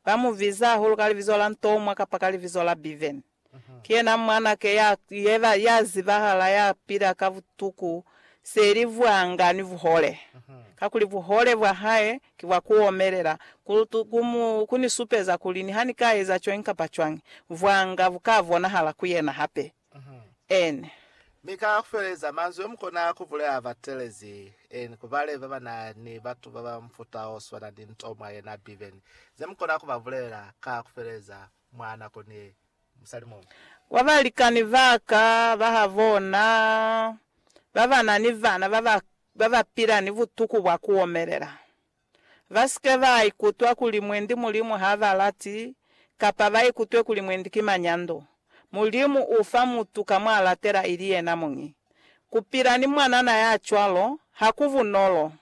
Ba mu biza hahulu ka libizo la Ntomwa kapa ka libizo la Bevan. Ki yena mwanake ya yeba, ya zibahala, ya pila ka butuku seli bwanga ni buhole. Kakuli buhole bwa hae ki bwa ku omelela, ku, ku mu, ku ni supeza kuli niha ni ka eza cwañi kapa cwañi, bwanga bu ka bonahala ku yena hape. N. Mi ka kufeleza, manzwi omukona kubulela batelezi N ku bale baba na ni batu baba mufuta oswana ni nto mwa yena Bibeni zemukona kuba bulelela ka kufeleza mwa nako ni musali muñwi. Kwa balikani baka bahabona baba na ni bana baba pila ni butuku bwa kuomelela, Ba si ke ba ikutwa kuli mwendi Mulimu ha ba lati, kapa ba ikutwe kuli mwendi ki manyando. Mulimu u fa mutu ka mw'a latela ili yena muñi. Ku pila ni mwanana ya cwalo ha ku bunolo,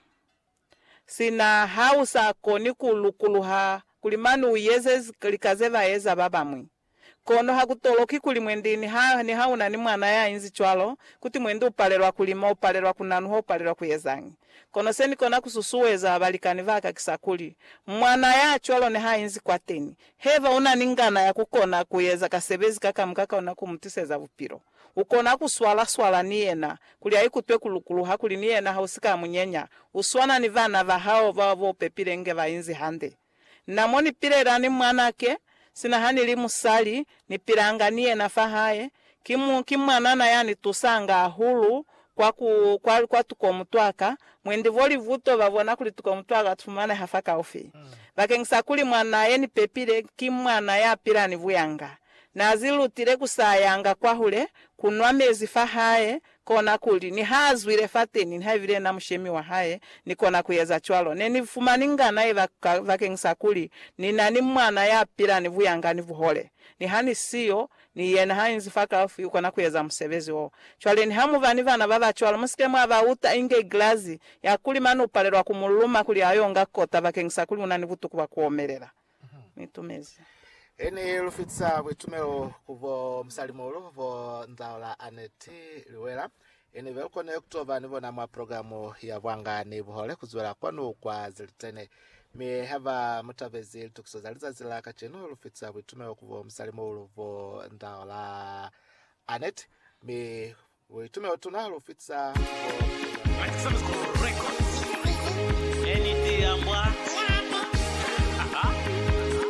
sina ha u sa koni ku lukuluha kuli mane u yeze lika ze ba eza ba bañwi. Kono ha ku toloki kuli mwendi niha, niha u na ni mwana ya inzi cwalo, kuti mwendi u palelwa ku lima, u palelwa ku nanuha, u palelwa ku ezañi. Kono se ni kona ku susueza balikani ba ka kisa kuli, mwana ya cwalo niha inzi kwateni, haiba u na ni ngana ya ku kona ku eza kasebezi ka ka muka ka ona ku mu twiseza bupilo, u kona ku swala, swala ni yena, kuli a ikutwe ku lukuluha, kuli ni yena ha u si ka mu nyenya, u swana ni bana ba hao bao bo pepile inge ba inzi hande. Na mo ni pilela ni mwanake, sina ha ni li musali, ni pilanga ni yena fa hae. Ki mu, ki mwanana ya ni tusanga hahulu kwa ku, kwa, kwa tuko mutwaka. Mwendi vo livuto ba bona kuli tuko mutwaka tu fumaneha fa kaufi. Bakengisa kuli mwanaa ye ni pepile, ki mwana ya pila ni buyanga. Na zi lutile ku sayanga kwahule, ku nwa mezi fa hae, Kona kuli, nihaazwile fateni, nihaibile yena mushemi wahae nikona kueza cwalo, nenifumani ngana ye bakeng sa kuli nina ni mwana yapila ni buyanga ni buhole. Niha nisiyo, ni yena hainzi fakaufi, ukona kueza musebezi wo. Cwale niha muba ni bana babacwalo, musike mwa bauta inge igilazi, ya kuli mane upalelwa kumuluma kuli ayo nga kota bakeng sa kuli unani butuku bwa kuomelela. mu itumezi. He ni lu fitisa buitumelo ku bo musalimuhulu bo Nzaola Annette Liwela, he ni be lu konile ku to ba ni bona mwa programu ya Bwanga ni Buhole ku zwela kwanu kwa Zilitene. Mi ha ba mu tabezi litukiso za lizazi la kacenu, lu fitisa buitumelo ku bo musalimuhulu bo Nzaola Annette, mi Hu itumela utuna ha lu fitisa bo.